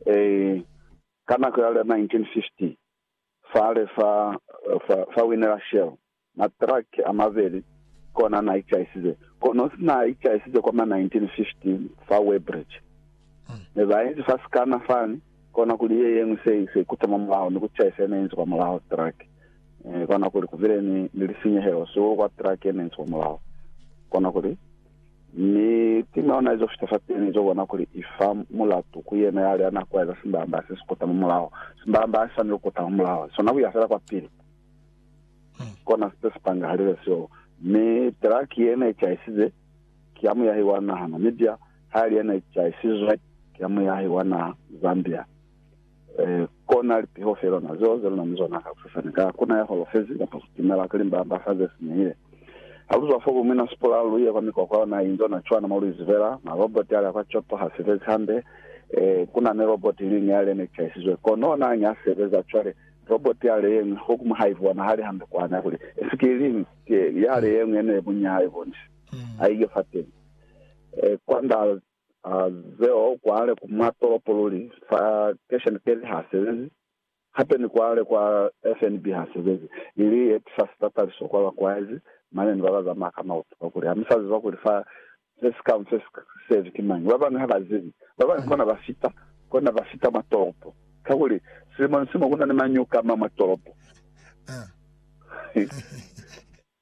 Ee, ka nako ya l'a 1950, fale fa, fa, fa wine la Shell, matraki a mabeli, kona n'a icaisize. Kono si n'a icaisize kwa mwa 1915 fa Weybridge. Ne ba inzi fa sikana fani, kona kuli ye yeñwi se, se ikuta mwa mulaho, ni ku caisa ye ne inzi kwa mulaho traki. Ee, kona kuli ku bile ni, ni lisinyehelo sihulu kwa traki ye ne inzi kwa mulaho. Kona kuli. Mi ki mauna izo fita fapili izo bona kuli i fa mulatu ku yena yale ya na kwaeza simbamba se si kuta mwa mulaho. Simbamba ha si swaneli ku kuta mwa mulaho. Sona ku ya fela kwapili. Kona se si pangahalile seo. Mi Terah ki yena i caisize, ki ya muyahi wa naha Namibia, ha li yena i caisizwe, ki ya muyahi wa naha Zambia. Kona lipiho fe lona zeo ze luna ni zona ka kusasani, ka kuna ya holofezi, kapa sitimela, kuli mbamba-mba ze sinyehile. Ha lu zwa fo, bu mina sipula, lu ye kwa mikwakwa yona inzo na cwana mo lu izibela. Ma roboti a lya kwa Kyoto ha sebezi hande. Kuna ni roboti iliñwi ya le ne chaisizwe kono na nge a sebeza. Cwale, roboti ya le yeñwi, ho kuma ha ibonahali hande kwani, a kuli, Esi ki iliñwi? Ki ya le yeñwi ye ne bunya ha ibonisi. Ha i ye fateni. Kwand'a A zeo kwale ku mwa tolopo luli, fa Cashian Kelly ha sebezi, hape ni kwale kwa FNB ha sebezi, ili yeti fa sitataliso kwa bakwaezi, mane ni baba zamaya ka mauto, kakuli ha musa ziba kuli fa se si ka mfe si sebi ki mañi. Ba bañwi ha ba zibi. Ba bañwi kona ba fita, kona ba fita mwa tolopo, kakuli silimo ni silimo kuna ni mañuka a ma mwa tolopo.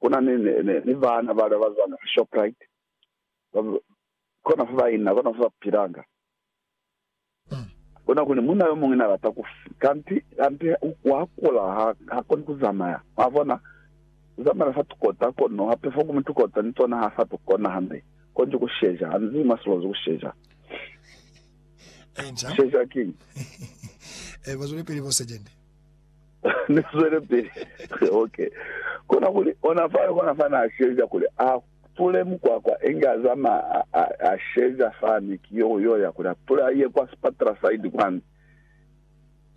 Kuna ni, ni, ni, ni baana bale bazanga kwa Shoprite, ba, kona fa ba ina, kona fa ba pilanga. Kuna kuli munna yomuñwi na lata ku fi, kanti, kanti wa kula, ha, ha koni ku zamaya. Mwa bona? Ku zamaela fa tukota kono, hape fo kumu tukota ni tona ha sa to kona hande, konji ku sheja, hanzi mwa silozi ku sheja. Ku sheja kiñi? Bazwelepili bo Sejende. Ni zwelepili. Ok. Kona kuli, ona fale, kona fa na sheja kuli a pule mukwakwa, inge a zamaya, a, a, a sheja fani, ki yo, yo ya kuli a pule a ye kwa sipatela side kwani.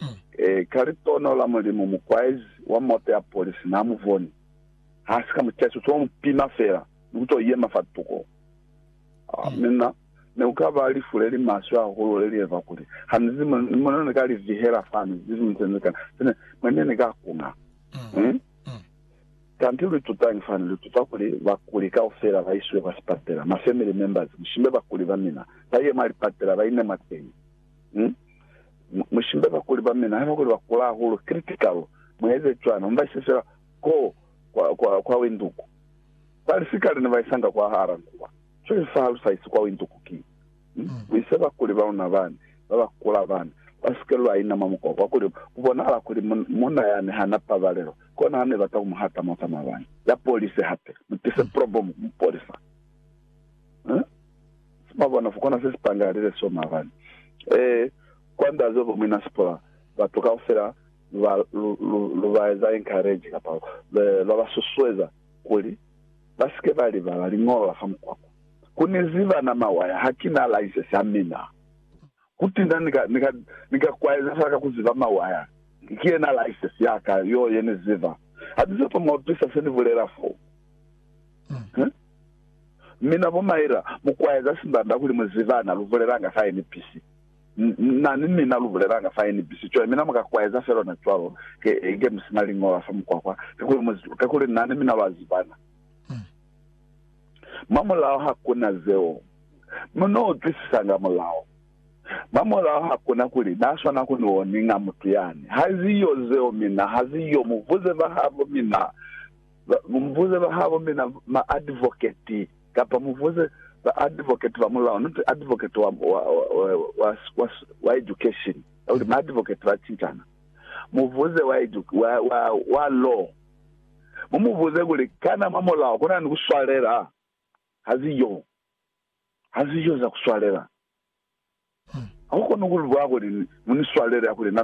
Mm. E, ka litono la Mulimu, mukwaezi wa moto ya polisi na mu boni. Ha si ka mu chaisa, u to mu pima fela, ni ku to yema fa tuko. Mi na, ne ku ka ba lifu le li maswe hahulu le li eza kuli ha ni zi mo, mo ne ni ka li vihela fani, ni zi mo se ni ka, se ne, mo ne ni ka kuna. Hmm? Kanti lu itutañi fani? Lu ituta kuli bakuli kaufela ba isiwe kwa sipatela, ma family members, mushimbe bakuli ba mina, ba ye mwa lipatela, ba ine mwateñi. Hmm? Mu, mushimbe bakuli ba mina, haiba kuli ba kula hahulu, critical, mu eze cwani? Mu ba ise fela koo kwa, kwa, kwa winduku. Bali sikale ne ba isanga kwahala nkuba, co Yesu ha lu sahisi kwa winto ku ki, Mi lu ise bakuli ba luna bani, ba ba kula bani, lwa si ke lwa inama mukwa, kakuli ku bonahala kuli munna yani ha na pabalelo. Kona ha ne bata ku mu hata mwa za mabani. Ya polise hape. Mu tise probomu ku mu polisa. Eh? Mwa bona, ku kona se si pangahalile seo mabani. Eh, kwa nda zeo bo muina Sipora, batu kaufela lu ba, lu, lu, lu ba eza encourage, kapa lwa ba susueza. kuli ba si ke ba libala liñolo la fa mukwakwa. Ku ni ziba na mawaya, ha ki na laisesi ya mina. Kutinda ni ka, ni ka, ni ka kwaeza fela ka ku ziba mawaya. Ki yena laisesi ya ka yo ye ni ziba. Ha ni sepa mwa utwisa se ni bulela fo. Huh? Mina bo Myra, mu kwaeza simbanda kuli mu zibana, lu bulelanga ka ye ni pisi. Na ni mina lu bulelanga fa NBC cwale, mina muka kwaeza fela ona cwalo, ke, ke mu sina liñola fa mukwakwa, kakuli mu, kakuli na ni mina lwa zibana. Mwa mulao hakuna zeo. Mu no utwisisanga mulao. Mwa mulao hakuna kuli Na swana ku ni oninga mutu yani. Haziyo zeo mina, haziyo. Mubuze bahabo mina, mubuze bahabo mina, ma advocate. Kapa mu buze ba advocate ba mulao, not advocate wa, wa, wa, wa, wa, wa education. Kuli ma advocate ba cintana. Mu buze wa, edu, wa, wa, wa law. Mu mu buze kuli, Kana mwa mulao kuna ni kuswalela? Haziyo. Haziyo za kuswalela. Haukoni kulibwa kuli, Mu ni swalele, akuli, Na, na, na.